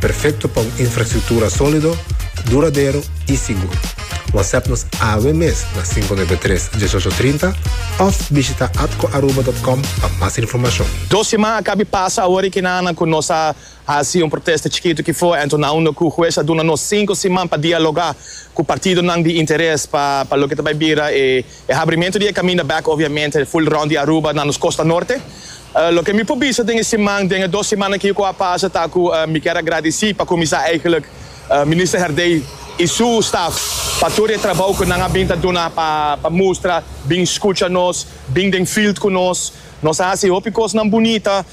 Perfecto pa un infrastructura solido, duradero y sigur. Whatsapp nos awe mes na cinco nuebe tres, dieshocho trinta of bishita atcoaruba.com pa mas informacion. Dos siman a cabi pasa awor ekinan cu nos a haci un protesta chikito ki for, anto nan unda cu hues a duna nos cinco siman pa dialoga cu partidonan di interes pa loke ta bay bira e. E habrimentu di e kaminda bèk obviamente ful rònt di Aruba na nos Kosta Norte. Loke mi por bisa den e siman, den e dos siman aki ku a pasa ta ku mi kier a gradisí pa kuminsá eigentlik Minister Herdey i su staf pa tur e trabou ku nan a bin ta duna pa pa mustra, bin skucha nos, bin den field ku nos. Nos a hasi hopi kosnan bunita.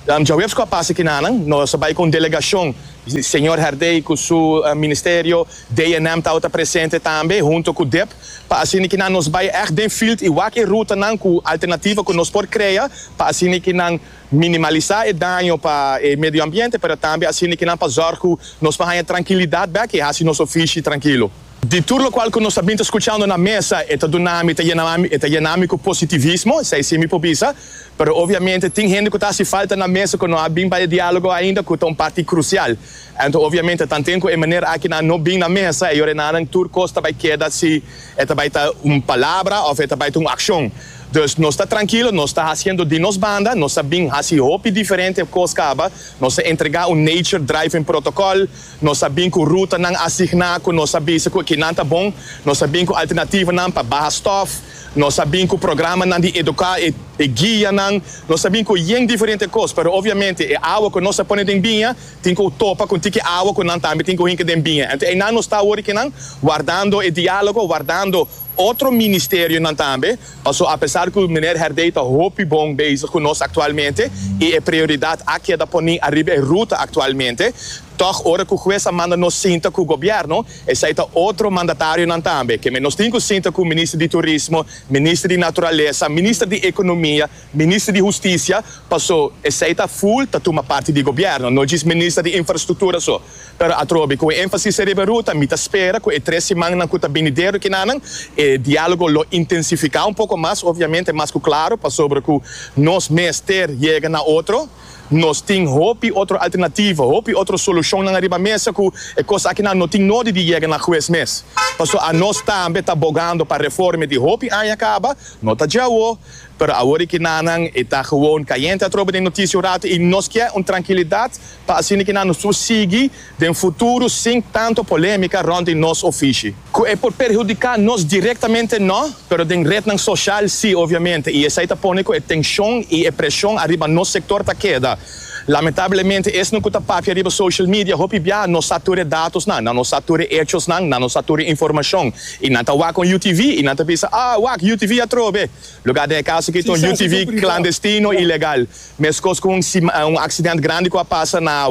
Djaweps ku a pasa kinanan nos a bai ku un delegashon, señor Herdey ku su ministerio, DNM tabata presente tambe hunto ku dep, pa asina kinan nos bai ègt den field i wak e rutanan ku alternativa ku nos por krea pa asina kinan minimalisá e daño pa e medioambiente pero tambe asina kinan pa zòrg ku nos por haña trankilidat bèk i hasi nos ofishi trankilo. Di tur lokual ku nos a bin ta skuchando na mesa, e ta duna mi, e ta yena mi ku positivismo, esei si mi por bisa. Pero obviamente tin hende ku ta hasi falta na mesa ku no a bin pa e diálogo ainda, ku ta un parti krusial. Anto obviamente tanten ku e manera aki nan no bin na mesa, e yorenanan tur kos ta bai keda si e ta bai ta un palabra òf e ta bai ta un akshon. Dus nos ta trankilo, nos ta hasiendo di nos banda, nos a bin hasi hopi diferente kos kaba, nos a entregá un nature-driven protokòl, Nos a bin ku rutanan asigná ku nos a bisa ku kinan ta bon. Nos a bin ku alternativanan pa baha stòf. Nos a bin ku programanan di eduká e guianan. Nos a bin ku yen diferente kos. Pero obviamente e awa ku nos a pone den biña tin ku topa ku un tiki awa ku nan tambe tin ku hinka den biña. Anto einan nos ta awor di kinan wardando e diálogo, wardando Otro ministerionan tambe, paso apesar cu Meneer Herdey ta hopi bon bezig cu nos actualmente y e prioridad a keda poni ariba e ruta actualmente, tog ora cu Hues a manda nos sinta cu Gobierno, esai ta otro mandatarionan tambe, keme nos tin cu sinta cu Minister di Turismo, Minister di Naturalesa, Minister di Economia, Minister di Husticia, paso esai ta full ta tuma parti di Gobierno, no djis Minister di Infrastructura so. Pero atrobe cu e enfasis a riba ruta, mi ta spera cu e tres simannan cu ta binidero kinanan e dialogo lo intensifica un poco mas, obviamente mas cu claro, pasobra cu nos mester yega na otro. Nos tin hopi otro alternativo, hopi otro solucionnan ariba mesa cu e cos akinan no tin nodi di yega na huez mes. Paso a nos tambe ta bogando pa reforme di hopi aña caba, no ta djawo, pero awor e kinanan e ta gewoon cayente atrobe den noticia un rato y nos kier un trankilidad, pa asina ki nan su sigui den futuro sin tanto polemica rond di nos ofishi. Cu e por perhudica nos directamente no, pero den rednan social si obviamente y esai ta pone cu e tension y e presion ariba nos sector ta keda. Lamentablemente esnan cu ta papia riba social media hopi bia no sa tur e datosnan, nan no sa tur e hechosnan, nan no sa tur e informacion y nan ta wak con UTV y nan ta bisa, ah wak UTV atrobe, lugar den e caso aki ton UTV clandestino ilegal. Meskos ku un aksident grandi ku a pasa na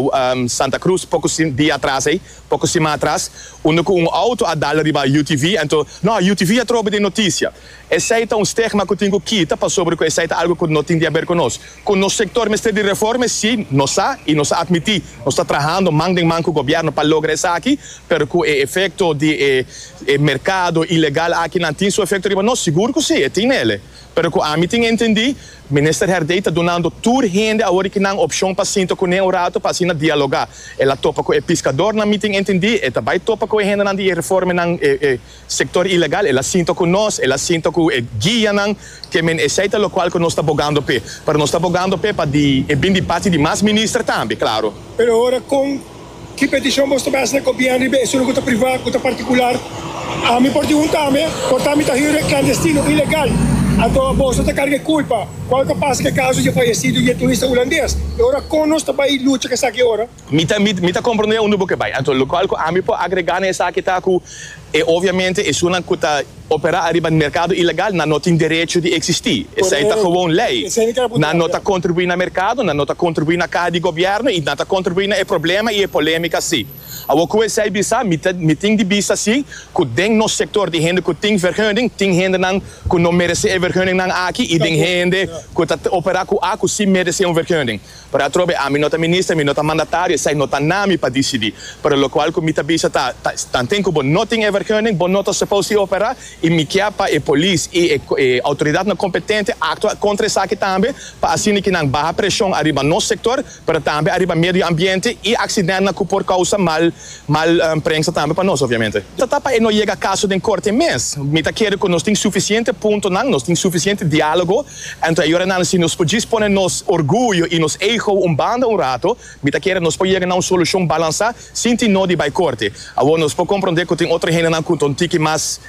Santa Cruz poko dia atras ei, poko sima atras, unda ku un outo a dal riba UTV, anto no, UTV a trobe den notisia. Esei ta un stigma ku tin ku kita pasobra ku esei ta algu ku no tin di aber ku nos. Ku nos sektor mester di reforma e si, nos sa i nos a atmití. Nos ta trahando man den man ku gobièrnu pa logra esaki, pero ku e efekto di e merkado ilegal aki nan tin su efekto riba nos? Sigur ku si, e tin nele. Pero ku ami tin entendí. Minister Herdey ta dunando tur hende awor ki nan opshon pa sinta kuné un rato pa asina dialogá. El a topa ku e piskador nan mitin entendí, e ta bai topa ku e hendenan di e reformenan, e e sektor ilegal, el a sinta ku nos, el a sinta ku e guianan, ke men esei ta lokual ku nos ta bogando p'e. Pero nos ta bogando p'e pa di e bin di parti di mas minister tambe, klaru. Pero ora kon. Ki petishon bo stop hasi na gobiern riba e sulu ku ta priva, ku ta partikular? Ami por di hunta ame, Porta mi ta hire klandestino, ilegal. Anto boso ta karga e kulpa. Kual ta pasa ku e kaso di e fayesido jetuista hulandes? E ora kon nos ta bai lucha ku esaki ora? Mi ta mi ta komprende unda bo ke bai. Anto lokual ku ami por agregá na esaki ta ku, E obviamente esunnan cu ta opera ariba e mercado ilegal nan no tin derecho di existi. Esey ta gewoon ley. Nan no ta contribui na mercado, nan no ta contribui na caha di gobierno y nan ta contribui na e problema y e polemica si. Awor cu esey bisa, mi ta mi tin di bisa si cu den nos sector di hende cu tin vergunning tin hendenan cu no merece e vergunningnan aki y den hende cu ta opera cu a cu si merece un vergunning. Pero atrobe ami no ta minister, mi no ta mandatario, esei no ta na mi pa disidí. Pero lokual ku mi ta bisa ta, ta tanten ku bo no tin e vergunning, bo no ta supos di operá, i mi kier pa e polis i e e outoridatnan kompetente aktua kontra esaki tambe, pa asina ki nan baha preshon ariba nos sektor, pero tambe ariba medio ambiente i aksidentnan ku por kousa mal mal prengsa tambe pa nos, obviamente. Ta ta pa e no yega kaso den korte mes. Mi ta kere ku nos tin sufisiente puntonan, nos tin sufisiente diálogo, Anto e ora nan si nos por djis pone nos orguyo i nos ego un banda un rato, mi ta kere nos por yega na un solushon balansá sin tin nodi bai korte. Awor nos por komprondé ku tin otro hendenan ku ta un tiki mas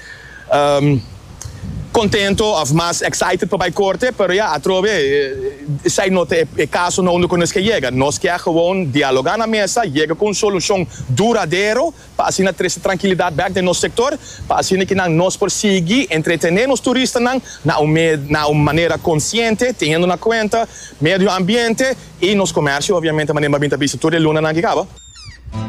kontento òf mas excited pa bai korte, pero ya atrobe esei no ta e kasonan unda ku nos ke yega. Nos ke a gewoon dialogá na mesa, yega ku un solushon duradero pa asina trese trankilidat bèk den nos sektor, pa asina ke nan nos por sigui entretené nos turistanan na un na un manera konsiente, teniendo na kuenta medio ambiente i nos komèrsio, obviamente, manera mi a bin ta bisa tur e lunanan ke kaba.